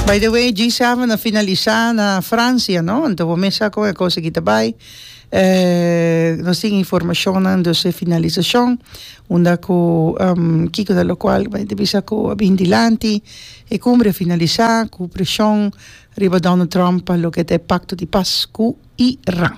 By the way G7 a finalisa na Francia no anto bo mesa con e cosa ki ta bay eh nos tin informacionnan dus e finalisacion unda cu kico ta locual bay ta bisa cu a bin dilanti e cumbre a finalisa cu presion riba Donald Trump pa loke ta e pacto di paz cu Iran.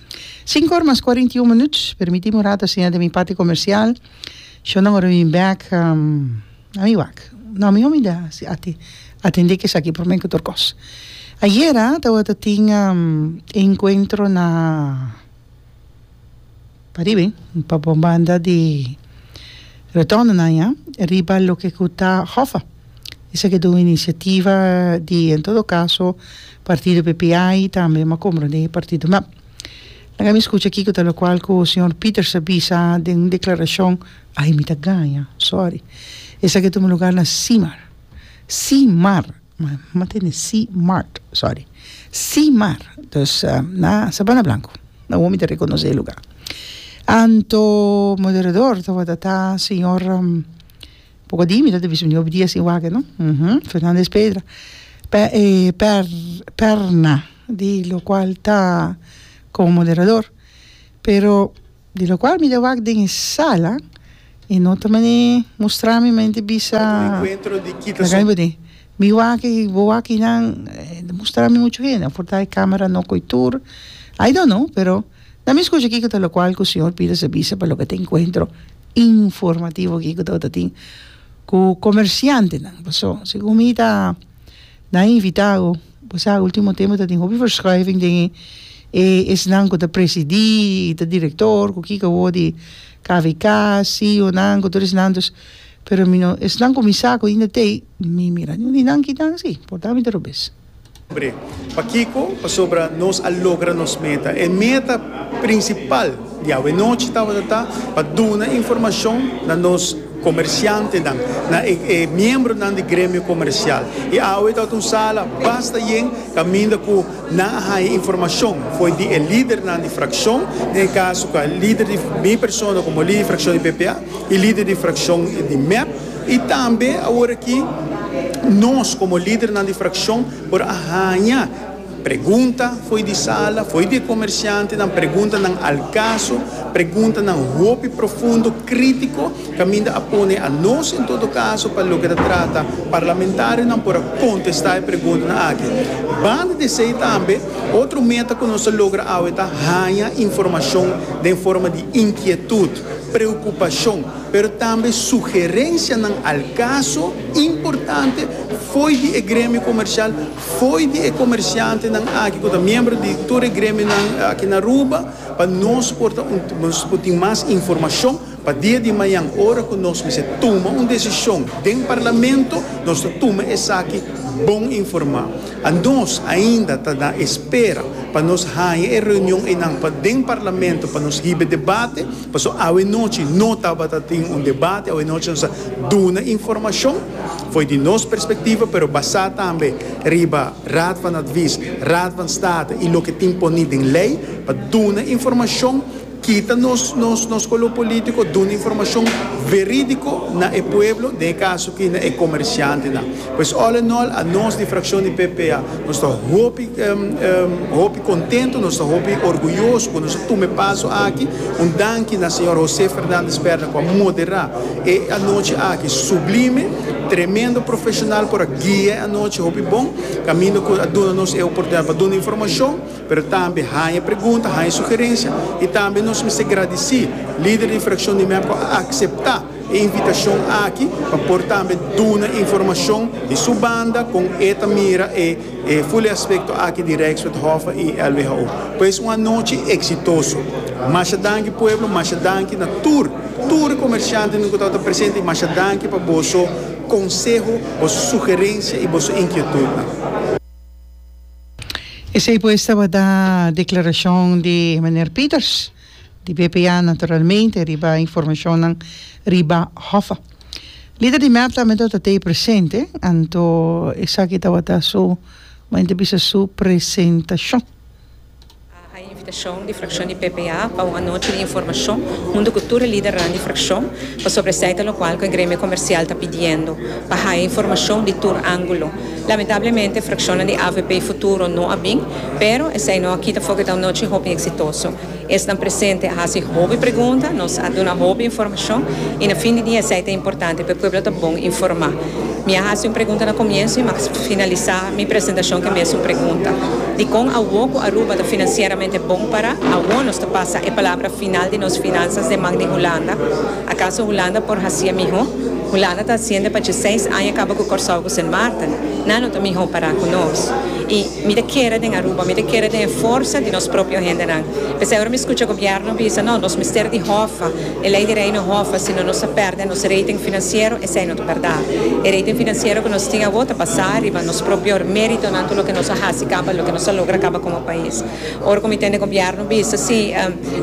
Sinku or mas kuarenta i un minuut, permitimi un ratu a siña den mi parti komersial, shon nan ora mi bin bèk, a mi wak, no mi homi da si ati atendé ku esaki por men ku tur kos. Ayera tabata tin e enkuentro na Paribe, pa bon banda di Rotondana ya, riba loke ku ta Hoffa, Esaki ta un iniciativa di en todo caso partido PPA y tambe ma comprende e partido mep. Laga mi escucha kiko ta locual cu señor Peters a bisa den un declaracion, ay mi ta gaña, sorry. Esaki ta un lugar na Simar, Simar, ma tende Simart, sorry, Simar, dus na Sabana Blanco, na wou mi ta reconoce e lugar. Anto moderador tabata ta señor. Poco di mi ta bisa un dia sin waken no uhmm Fernandez Pedra per per perna di lo cual ta como moderador pero di lo cual mi ta wak den e sala y no ta mane mustra mi mane ta bisa laga mi bot'e mi wak y bo wak y nan ta mustra mi mucho hende por ta e camera no coy tur I don't know pero na mi scucha kico ta lo cual cu señor Pires a bisa pa loke ta encuentro informativo aki ku ta tabata tin ku komersiantenan paso segun mi ta nan invita ku bo sa ultimo tempo ta tin hopi verschuiving den e esnan ku ta presidi i ta direktor ku kiko awor di kvk CEO nan ku tur esnan dus pero mi no esnan ku mi sa ku ainda te mi mira niun di nan kitan si por tanto mi ta rubes. Bre. Pakico? Pasobra nos a logra nos meta. E meta principal di awe-nochi tabata ta pa duna informacion na nos comerciantenan, na e miembronan di gremio comercial. Y awe tabata un sala basta yen caminda cu nan a haya informacion fo'i di e lidernan di fraccion, den e caso cu a lider di mi persona como lider di fraccion di PPA y lider di fraccion di mep. I tambe awor aki nos komo lidernan di frakshon por a haña pregunta fo'i di sala, fo'i di e komersiantenan, preguntanan al kaso, preguntanan hopi profundo, krítiko, kaminda a pone anos en todo kaso pa loke ta trata parlamentarionan por a kontestá e preguntanan aki. Banda di esei tambe otro meta ku nos ta logra awe ta haña informashon den forma di inkietut, preokupashon, pero tambe sugerencianan al caso importante fo'i di e gremio comercial, fo'i di e comerciantenan aki cu ta miembro di tur e gremionan aki na Aruba, pa nos por ta un, nos por tin mas informacion pa dia di mañan ora cu nos mester tuma un decision den Parlamento, nos ta tuma esaki bon informa. A nos ainda ta na espera pa nos haña e reunion eynan pa den Parlamento pa nos hiba e debate. Paso awe nochi no tabata tin un debate, awe nochi nos a duna informashon fo'i di nos perspektiva, pero basá tambe riba Raad van Advies, Raad van State i loke tin poní den lei pa duna informashon, kita nos nos nos kolo polítiko, duna informashon verídiko na e pueblo, den e kaso akí na e komershantenan. Pues all in all, a nos di frakshon di PPA nos ta hopi hopi. Kontentu, nos ta hopi orguyoso ku nos a tuma e paso aki. Un danki na señor José Fernández Perna ku a moderá e anochi aki sublime. Tremendo profeshonal por a guia e anochi hopi bon, kaminda ku a duna nos e oportunidat pa duna informashon, pero tambe haña pregunta, haña sugerensia. I tambe nos mester gradisí lider di frakshon di mep ku a akseptá e invitashon aki pa por tambe duna informashon di su banda kon e ta mira e. E fuli aspekto aki di Rijkswethoven i LWHO. Pues un anochi eksitoso. Masha danki pueblo, masha danki na tur, tur komershantenan ku tabata presente i masha danki pa boso konseho, boso sugerensia i boso inkietutnan. Esei pues tabata deklarashon di Meneer Pieters. di BPA naturalmente riba informacionnan riba Hoffa. Lider di mep tambe anto ta tey presente, anto esaki tabata su, bo inter bisa su presentacion. A haña invitacion di fraccion di BPA pa un anochi di informacion hunto cu tur e lidernan di fraccion pasobra esey ta locual cu e gremio comercial ta pidiendo pa haya informacion di tur angulo. Lamentablemente fraccionnan di avp Futuro no a bin, pero esey no a kita foc eta un nochi hopi exitoso. Esnan presente a haci hopi pregunta, nos a duna hopi informacion y na fin di dia esey ta importante p'e pueblo ta bon informa. Mi a haci un pregunta na comienso y mi a finalisa mi presentacion cu e mesun pregunta, Dicon awo cu Aruba ta financieramente bon para awo nos ta pasa e palabra final di nos finanzas den man di Hulanda? Akaso Hulanda por hacié mihó? Hulanda ta haciende pa dje seis aña caba cu Corsou cu Sint Maarten. Nan lo ta mihó pará cu nos. Y mi ta kere den Aruba, mi ta kere den e forsa di nos propio hendenan. P'esei ora mi scucha Gobierno bisa, no, nos mester di hòfa, e ley di Reino hòfa, sino nos a perde nos rating financiero, esei no ta berdá. E rating financiero cu nos tin awó ta basá riba nos propio méritonan cu loke nos a haci caba, loke nos a logra caba como pais. Ora cu mi tende gobierno bisa si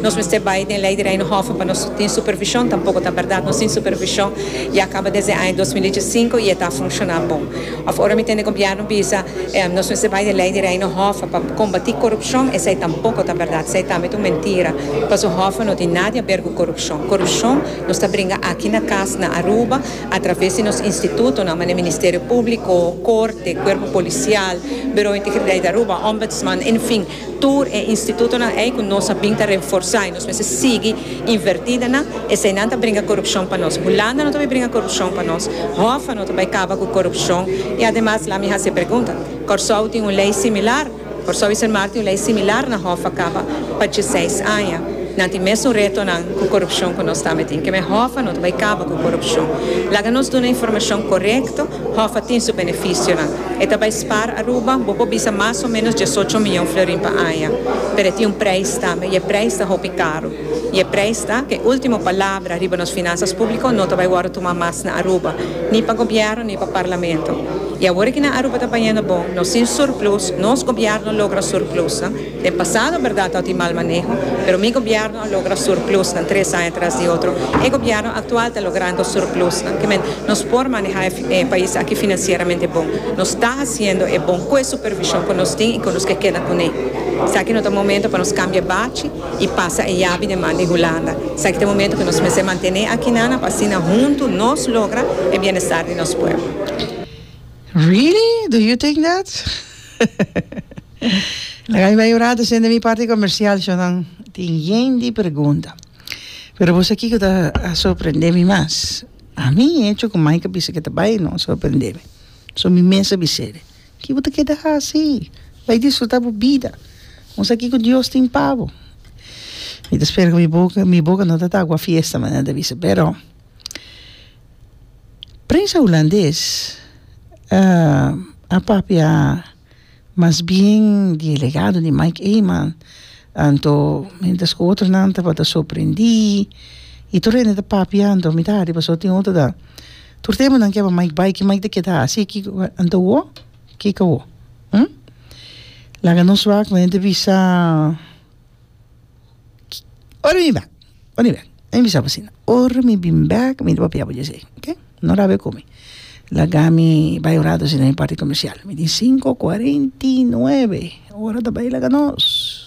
nos mester bay den Ley di Reino Hof pa nos tin supervision, tampoco ta berdad. Nos tin supervision ya caba desde e aña dos mil dieci cinco y e ta funciona bon. Of ora mi tende gobierno bisa nos mester bay den Ley di Reino Hof pa combati corupcion, esey tampoco ta berdad. Esey ta mit un mentira. Pasobra Hof no tin nada a ber cu corupcion. Corupcion nos ta bringa aki na cas na Aruba A traves di nos institutonan, mane Ministerio Públiko, Korte, Kuerpo Polisial, Birou Integriteit Aruba, Ombudsman, enfin, tur e institutonan ei ku nos a bin ta reforsá i nos mester sigui invertí den nan, eseinan ta bringa korupshon pa nos. Hulanda no ta bai bringa korupshon pa nos, Hoffa no ta bai kaba ku korupshon i ademas, lami hasi e pregunta, Kòrsou tin un lei similar? Por Sobi Sen Martin lei similar na Hof a kaba pa dieseis aña. Nan tin mesun retonan ku korupshon ku nos ta mitin. Ke mehó pa no ta bai kaba ku korupshon. Laga nos duna informashon korekto, Hof a tin su benefisionan. E ta bai spaar Aruba, bo por bisa mas o menos diesocho miyon florin pa aña. Pero e tin un preis tambe, i e preis ta hopi karu. y e prijs ta cu e ultimo palabra riba nos finanzas publico no ta bay wordo tuma mas na Aruba, ni pa gobierno ni pa parlamento. Y awor cu na Aruba ta bayendo bon, nos sin surplus, nos gobierno logra surplusnan, den pasado berdad tawat y mal maneho, pero mi gobierno a logra surplusnan tres aña tras di otro, e gobierno actual ta logrando surplusnan, que men nos por maneha e pais aki financieramente bon, nos ta haciendo e bon cu e supervision cu nos tin y cu nos ke keda cune. Esaki no ta momento pa nos cambia bachi. y pasa e yabi den man di Hulanda. Esaki ta e momento cu nos mester mantene akinana pa asina huntu nos logra e bienestar di nos pueblo. Really? Do you think that? Laga mi bai un rato sende mi parti comercial sho nan tin yen di pregunta. Pero bo sa kico ta a sorprende mi mas? A mi e hecho cu Mike a bisa cu e ta bai no a sorprende mi. So mi mes a bis'e. Ki bo ta keda hasi? Bai disfruta bo bida. Musa kiko Dios tin pa bo. Mi ta spera ku mi boka mi boka no ta ta agua fiesta manera ta bisa, pero prensa hulandes a papia mas bien di e legado di Mike Eman anto mientras ku otronan tabata sorprendi i tur hende ta papia anto mi ta hadi paso tin otro ta Tur tempo nan keba Mike bai ki Mike ta keda hasi kiko ku anto wo kiko wo hm laga nos wak mi ta bisa ora mi bek ora mi bek mi bisa bo asina ora mi bin bek mi ta papia bo dje sei oke no rabia ku mi laga mi bai un rato asina den parke comercial mi tin sinku kuarenti i nuebe ora ta bai laga nos.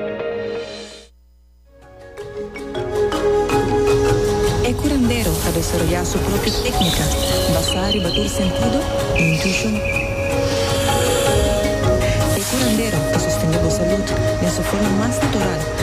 E curandero a desaroyá su propio téknika basá riba tur sentido i intuishon. E curandero ta sostendé bo salud den su forma mas natural.